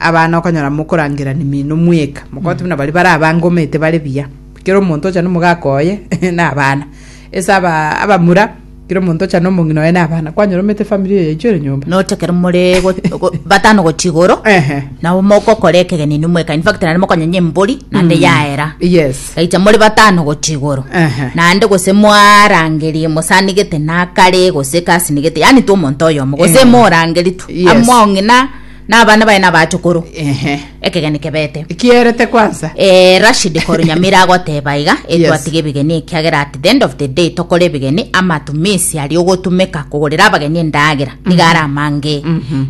abana okonyora mokorangera nimino mweka mogote buna bari bara abange omete bare biya kero omonto ocha nomogaka oye na abana ese aba abamura kero omonto ocha nomong'ina oye na abana kwanyora omete family eye yaichwere nyomba noche kero more go- go- batano gochia igoro Ehe. nabo mogokora ekegeni inwe mweka infact naende mokonyenya embori naende yaera yes gaicha more batano gochia igoro Ehe. naende gose mwarangeria mosanigete nakare gose kasinigete yani tu omonto oyomo gose Eh. morangeria tu Yes. among'ina na abana baye na abaachukuru Ehe. ekegeni kebete Kierete kwansa. Eh, Rashid koru Nyamira agoteba iga Yes. etwatige ebigeni ekiagera at the end of the day tokore ebigeni amatumisi ari ogotumeka kogorera abageni endagera niga ara amange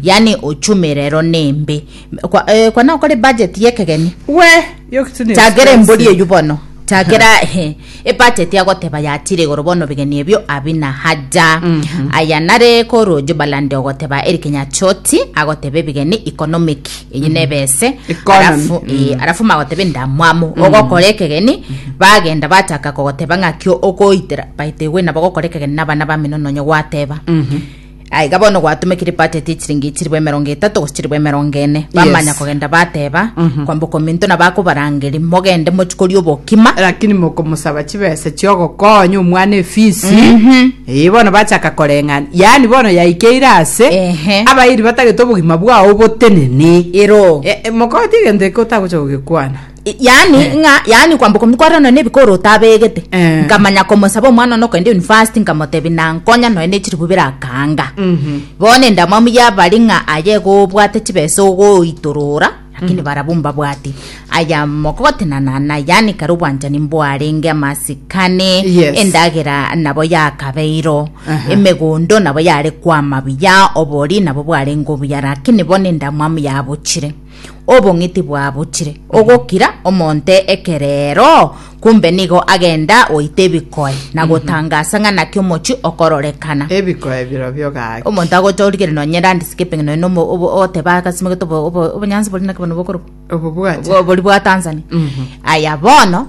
yani uchumi rero nembe Kwa- eh, kwana okore budget yekegeni We, yokitunio. chagera embori eyu bono chagera he Ebacheti agoteba yachire igoro bono bigeni ebio abi na haja. Aya nare korwa Jubaland ogoteba Eric Nyachoti agoteba ebigeni economic eyi nebe ese Economy. arafu eh, arafu magoteba endamwamu ogokora ekegeni bagenda bachaka kogoteba ng'aki okoitera baite gwe nabo gokora ekegeni nabana bamino nonye gwateba Aiga bono gwatomekire batete echiringi chiribo emerongo etato gose chiribo emerongo ene bamanya Yes. kogenda bateba kwamboka ominto na bakobarangeri mogende mochikoria obokima lakini mokomosaba chibesa chiogokonya omwana efisi ee bono bachaka koreng'ana yaani bono yaikeire ase Ehe. abairi batagete obogima bwao botenene ero E- e, mokoti egento eke otagocha gogekwana yaani eh. ng'a yaani kwamboka omonto kwarera nonya ebikoro otabegete eh. nkamanya komosaba omwana one okogenda university nkamotebi nankonya nonya ne chiribu birakanga mhm. bono endamwamu yabari ng'a aye gobwate chibesa ogoitorora lakini mhm. barabu mbabwati aya mogotenanana yaani kare obwanchani mbwarenge amasikane endagera nabo yakabeiro emegondo nabo yare kwama buya obori nabo bwarenge obuya lakini bono endamwamu yabochire obong'iti bwabuchire, ogokira omonte ekerero, kumbe nigo agenda goita ebikoe na gotangasa ng'a naki omochie okororekana. ebikoe birobio gaki Omonto agotorigere nonye landscaping nonya omo- obo- ogoteba agasimegete obo- obo- obonyansi bori naki bono bokorwa obobwate bori bwa Tanzania aya bono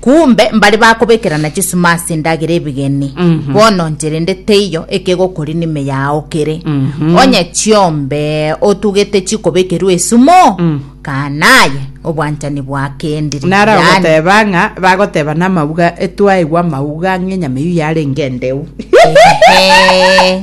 Kumbe mbare bakobekerana chisuma ase endagera ebegeni, bono nche rende teiyo ekegokori nime yao kere. Onye chiombe otugete chikobekerwa esumo, kaana aye obwanchani bwakendire. Naro Yaani, agoteba ng'a bagoteba namauga etwaigwa amauga ng'enyama eyio yarenge endeu. Ehe.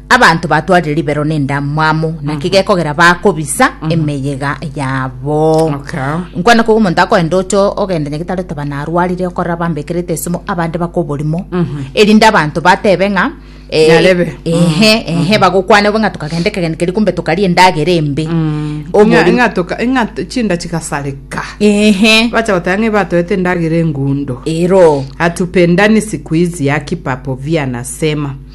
Abanto batwarire ribero nendamwamu, naki gekogera bakobisa emeyega yabo. Okay. Nkwana kogu omonto akoenda oche ogenda nyagetari otaba narwarire okorora bambekerete esimo abande baka oborimo erinde abanto batebe ng'a eh, Nyarebe. ehe ehe bagokwana obe ng'a tokagenda ekegeni keria kumbe tokaria endagera embe Obori- ng'atoka ing'ato chinda chigasareka ehe bacha goteba ng'a ibatoete endagera engundo ero hatupendani siku hizi akipapo via nasema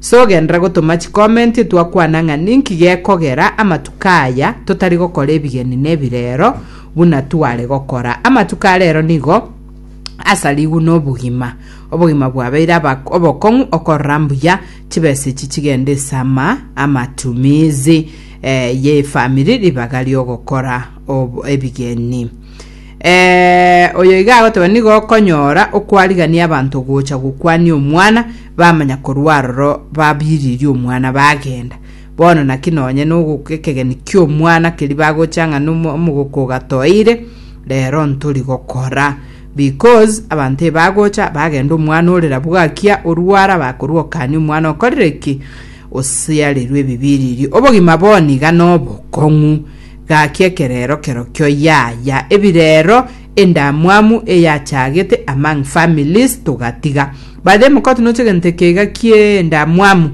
Sogenderera gotoma chikomenti twakwana ng'a ninki gekogera amatuko aya totari gokora ebigeni na ebirero buna tware gokora. Amatuko a rero nigo asarigwe nobogima. Obogima bwabeire aba- obokong'u okorora mbuya chibesa echi chigende ase ama amatumizi eh, y'efamiri ribaga riogokora ob- ebigeni. Eh, oyo iga agotoba nigo okonyora okwarigania abanto gocha gokwania omwana bamanya korwa aroro babiririe omwana bagenda. Bono naki nonye n'ogo- ekegeni ki'omwana keri bagocha ng'a nomo- omogoko ogatoeire, rero ntori gokora. Because abanto ebagocha bagenda omwana ore rabu gakia orwara bakorwa okania omwana okorire ki? Osiarirwe ebibiririe. Obogima bono iga nobokong'u. Gaki ekerero kerokio yaya ebirero Endamwamu eyachagete among families togatiga. By the way mokoti noche egento eke iga kie endamwamu.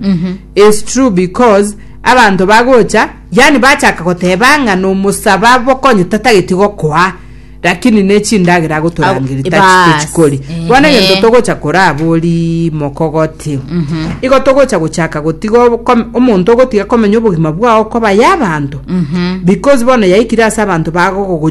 It's true because abanto bagocha yani bachaka goteba ng'a nomosaba bokonye tatageti gokoa lakini ne chindagera agotorangeria Abo- tachi bas. tochikori. Bono Ehe. egento togocha korabori mokogoti. Igo togocha gochaka gotiga obokome- omonto ogotiga komenya obogima bwao koba y'abanto. Because bono yaikire ase abanto bagogogo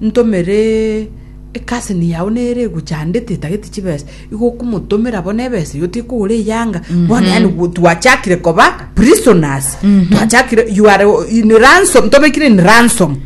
Ntomere ecousin yao nere eguchandete etagete chibesa igo okomotomera bono ebesa eyo tekogora eyanga bono yaani gu- twachakire koba prisoners twachakire you are in ransom tobekire in ransom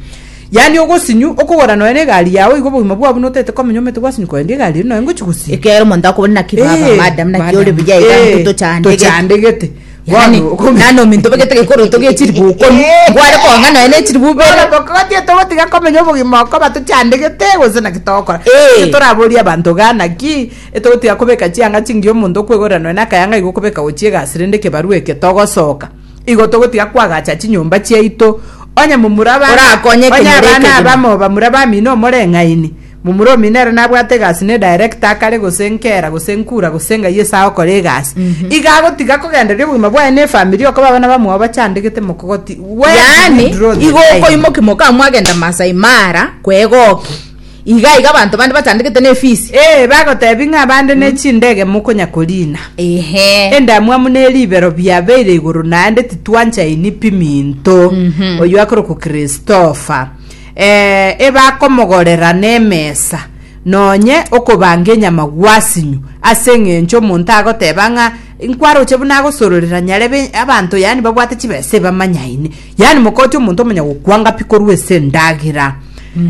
yaani ogosinyu okogora nonya na egari yao igo obogima bwabo notagete komenya omanyete gwasinyu korende egari eri nonya ngochi gosinya ekero omonto akobona naki baba Eh, madam naki ore madam. buya iga Eh, ngotochandege tochandegete Yaani, yaani ominto obegete gekoroto gie chilifu okori, nkware kong'a nonya ne chilifu ibere. Bono tokogotie togotiga komenya obogima okoba tochandegete gose naki togokora. Ee. Inche toraborie abanto igaa naki etogotiga kobeka chianga chingiya omonto okwegorera nonya nakayanga igo okobeka gochia egasi rende ekebarua eke togosoka igo togotiga kwagacha chinyomba chiaito onye momura abana Orakonyeke onye abana nyer'ekegima. abamo bamura bamino omoreng'aini Momoromi nere nabwate egasi ne director akare gose nkera gose nkura gose ng'ai ase agokora egasi. Iga agotiga kogendereria obogima bwaye ne efamiri okaba abana bamwao bachandegete mokogoti. Where do Yaani, you draw the igo line? okoimoki moka mwagenda Masai Mara kwegokia. Iga iga abanto bande bachandegete ne fees. Ee, bagotebi ng'a abande ne chindege mokonya korina. Ehe. Endamwamu ne ribero biabeire igoro naende titwanchaini piminto. Oyo akorokwa Christopher. Ee, ebakomogorera nemesa, nonye okobanga enyama gwasinyu, ase engencho omonto agoteba ng'a nkwaroche buna agosororera nyarebe abanto yani babwate chibesa ebamanyaine. Yani mokochi omonto omanya gokwanga pi korwa ase endagera.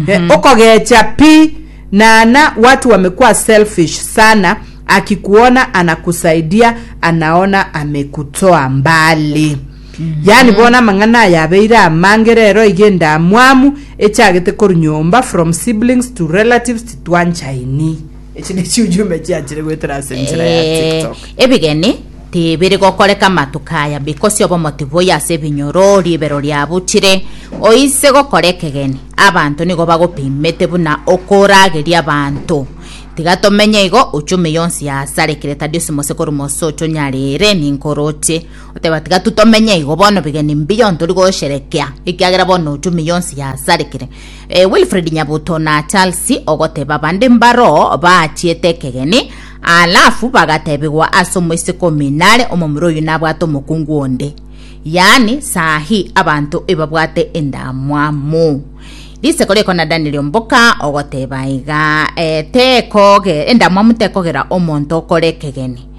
Eh, okogecha pi nana watu wamekuwa selfish sana akikuona anakusaidia anaona amekutoa mbali. Yaani bono amang'ana aya abeire amange rero iga endamwamu echagete korwa nyomba from siblings to relatives titwanchaini. Echi ne chiujumbe chiachire goetera ase enchera ya Eh, TikTok. ebigeni tibiri gokoreka amatuko aya because of omoti boyo ase ebinyoro ribero riabuchire oise gokora ekegeni abanto nigo bagopimete buna okorageria abanto tiga tomenye igo uchumi yonsi yasarekire tadi osimose korwa mose ocho nyarere ninko oroche Goteba, Tiga tomenye igo bono, bigeni mbiyo ntori gosherekea, ekiagera bono ochumi yonsi yasarekire. E, Wilfred Nyabuto na Charles ogoteba bande mbaro baachiete ekegeni, alafu bagatebigwa ase omoiseke ominare omomura oyo nabwate omokungu onde. Yaani sahi abanto ebabwate endamwamu. Riseko riko na Daniel Omboka ogoteba iga, e, tekoge, endamwamu tekogera omonto okore ekegeni.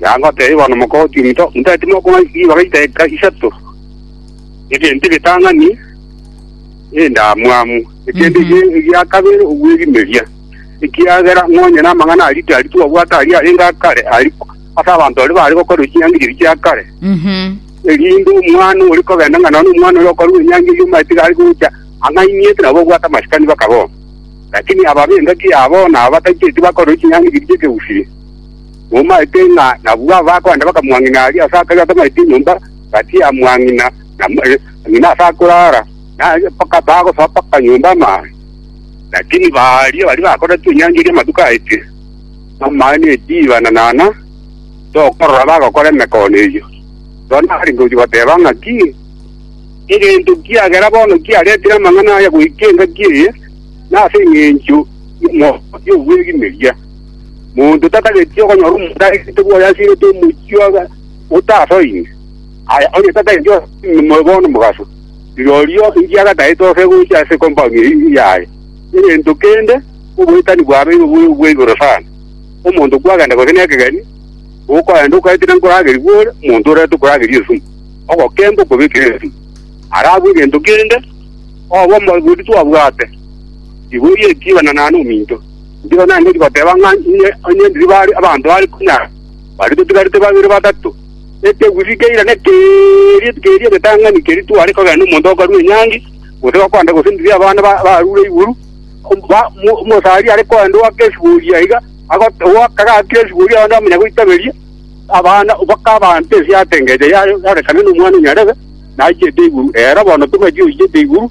Yagoteba, Bono mokogotia ominto, motagete mokong'a ribaga ritaiga isato, egento egetang'ani, endamwamu, ekeene eke egia kabere ogwerimeria, ekiagera nonya namang'ana aria tari twabwate aria arenge akare aria ase abanto baria baare gokorerwa chinyangereria chia kare, Mhm. erinde omwana ore kogenda ng'a nonya omwana oria okorerwa enyangereria omanyete iga are gocha ang'ainiete nabo babwate amasikani bakabao. Lakini aba b'engaki yabo na abatacheti bakorerwa chinyangereria chi'ekegusii. Momaete ng'a nabwo abakogenda bakamwang'ina aria ase akare atamaete enyomba gati ya mwang'ina na ng'ina ase akorara, na mpaka bagosaba mpaka nyomba amaani. Lakini baaria baria bakoretwe enyancha eria amatuko aetire, amaani na ebiiba na naana, tokorora bagokora emekono eyio. Rorio nabarenge gochia goteba ng'aki, Egento kiagera bono kiaretire amang'ana aya goika engaki eye, na ase engencho y'omorwoti obw'ebimeria. Monto tatageti okonyora omonto arekerete bwoye asirete omochie obe otasoine, aye onye tatageti omobe bono omogaso, rirorio inki agataete ose gocha ase compound eye yaye? Egento kende oboretani bwabeire obobe bwa igoro sana. Omonto kwagenda gose nekegeni, okoenda okaetera nkoragerigwe ore, omonto oreta okorageria esumu, ogokemba okobekera esumu. Arabwo egento kende, obe omorwoti twabwate, riboria ekiibana naende ominto. Nigo naengeti goteba ng'a inwe onye ndiba are abanto are konyara, baria totigarete babere batato, ekegusii keirane keria keria egetang'ani keria tware kogenda nomonto okarua enyangi, gose gokwana gose ndiri abana barure iguru, omosari are kogenda oaka esibori aiga, oaka gakire esibori abande bamanya goitaberia, abana mpaka abanto ense yatengecha yarekana nomwana o Nyarebe, nachete iguru. Ero bono tobwetie oichete iguru.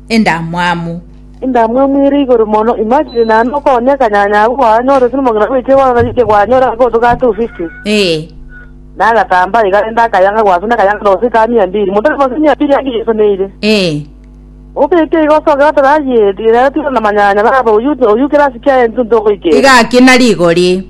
endamwamu. Endamwamu ere igoro mono. Imagine naende okonya kanyanya abwo kwanyore gose nomong'ina bwechire kwanyora rike kwanyore agotoka 250. Ee. Na agatambaa iga rende akayang'a gose na akayang'a nose kaa mia mbiri. Monto aremonse mia mbiri ande yesoneire. Ee. Obeke iga osoke goteba ayie rero tiga na manyanya baba oyio oyio kera asike aye intwe ntogoikera. Iga akina rigori.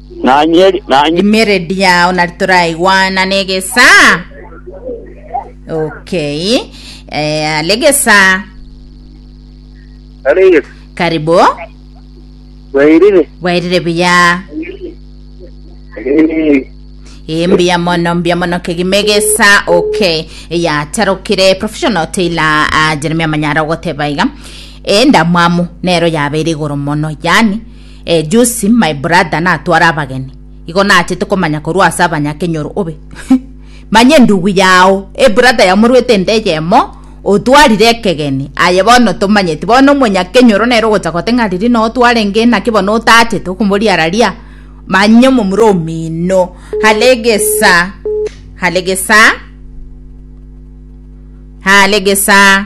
Nanye, nanye, Emeredi yao nari toraigwana negesa. Okay. Eh, alegesa. Alegesa. Karibu. Bwairire. Bwairire buya. Eh, Eh, mbuya mono mbuya mono kegimegesa okay yatarokire professional tailor uh, jeremia manyara ogoteba iga e ndamwamu nero yabeire igoro mono yani Eh Josi, my brother natware abageni. Igo nachete komanya korwa ase abanyakenyoro obe. Manye endugu yao, ebrother yao morwete ende eyemo, otwarire ekegeni. Aye bono tomanyeti. Bono omonyakenyoro nere ogocha gote ng'a riria noo twarenge inaki bono otachete okomoriararia. Manye omomura omino. Halegesa. Halegesa. Halegesa.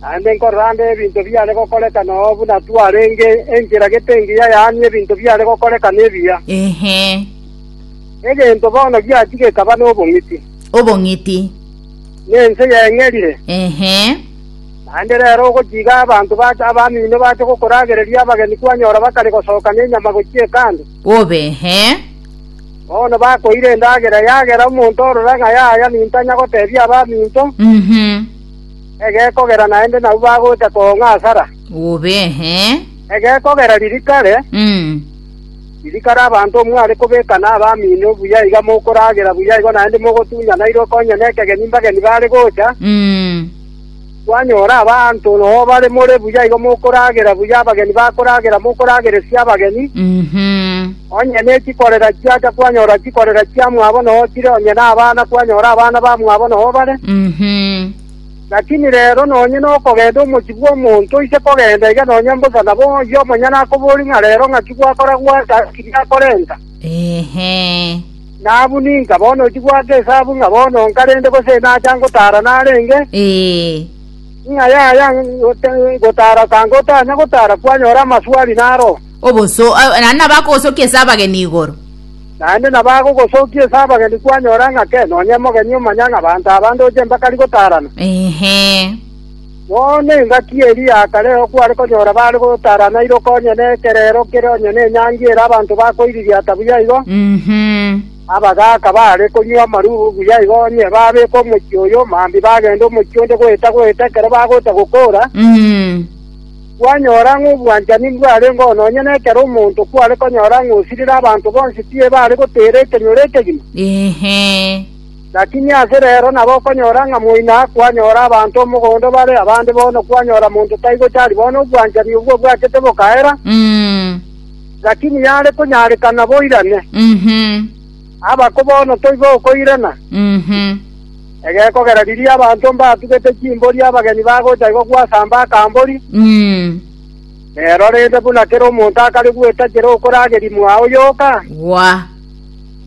Naende nkorora ande ebinto biare gokoreka noo buna twarenge enchera gete engiya yaani ebinto biare gokoreka nebiya. Ehe. Egento bono giachia gekaba nobong'iti, Obong'iti. na ense yeng'erire. Ehe. Naende rero ogochiga abanto bache abamino bache gokoragereria abageni kwanyora bakare gosoka nenyama gochia ekando, Obe ehe. bono bakoira endagera yagera omonto orora ng'a yaya nintanya gotebia abaminto, Mhm. Egekogera naende nabwo bagocha koong'a asara. Obe, eh. Egekogera riri kare, Mm. riri kare abanto omwe are kobeka na abamino buya iga mokoragera buya igo naende mogotunyana iroko onye nekegeni mbageni bare gocha, Mm. kwanyora abanto noo bare more buya igo mokoragera buya abageni bakoragera mokorageresia abageni. Mhm. Onye ne chikorera chiacha kwanyora chikorera chiamwabo noho chire, onye nabana kwanyora abana bamwabo noho bare. Mhm. Lakini rero nonye nokogenda omochie bw'omonto oise kogenda iga nonye mbosa nabo oyio omonyene akoborie ng'a rero ng'aki gwakora gwancha ase ki giakorenta. Ehe. Nabu ninka bono ochi gwaka esabu ng'a bono nka rende gose nacha ngotara narenge Ee. ng'a yaya ngote- ngotara sanga otanya gotara kwanyora amaswali naro. Oboso, naende nabakogosokia ase abageni igoro. Naende nabagogosokia ase abageni kwanyora ng'a kee, nonya omogeni omanya ng'a abanto aba ndoche mbakari gotaarana. Inhe. Bono engaki eria ya kare okware konyora bare gotaarana ire okonye na ekerero kere onye na enyangi ere abanto bakoiririata buya igo, Inhe. abagaaka baare konywa amarubu buya igo, onye babeeka omochie oyo, mambia bagende omochie onde goeta-goeta ekero bagoeta gokoora. Inhe. Kwanyora ng'a obwanchani mbwarengeo nonya nekero omonto kware konyora ng'a osirire abanto bonsi tibare goteera ekenyoro ekegima? Inhe. Lakini ase reero nabo okonyora ng'a moino aa kwanyora abanto omogondo bare abande bono kwanyora monto tai gochari bono obwanchani obwo obwachete bokaera, Mm. lakini yare konyarekana boirane. Inhe. Abako bono toiba okoirana, Mhm. egekogera riria abanto mbatugete chimbori abageni bagocha igo gwasamba akambori, Mm. nero rende buna kera omonto akare gwetachera okorageria mwao yoka, Gwa.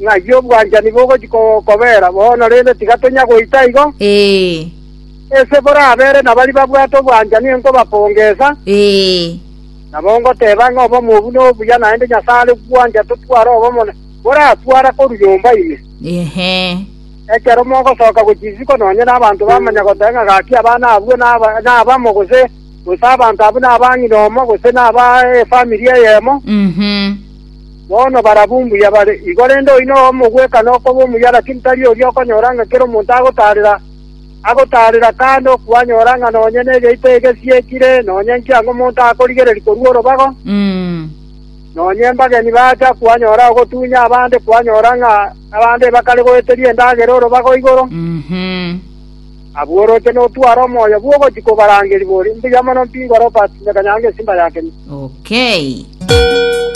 ng'ai obwanchani bogochi ko- kobera bono rende tiga tonya goita igo, Ee. ese borabere nabari babwate obwanchani enkobapongesa, Ee. nabo ngoteba ng'a obomo obu nobuya naende Nyasae are gwancha totware obomo na moratware korwa nyomba ime. Inee! Ekero mogosoka gochia isiko nonye nabanto bamanya goteba ng'a gaki abana abwo nabamo, gose gose abanto abwo naba ng'ina omo, gose naba efamiri eyemo, bono barabwo mbuya bare. Igo rende oino omogweka nokoba omuya, lakini tari oria okonyora ng'a kera omonto agotaarera, agotaarera kando, kwanyora ng'a nonye negeito egesiekire, nonye nkiang'omonto akorigereria korua orobago. Nonya embageni bacha kwanyora ogotunya abande, kwanyora ng'a abande bakare goeteria endagera orobaga o igoro, abwo oroche notware omoyo bw'ogochia kobarangeria bori, Mbuya mono mpingwa Robert, nyakanyanga esimba ya kenya. Okay.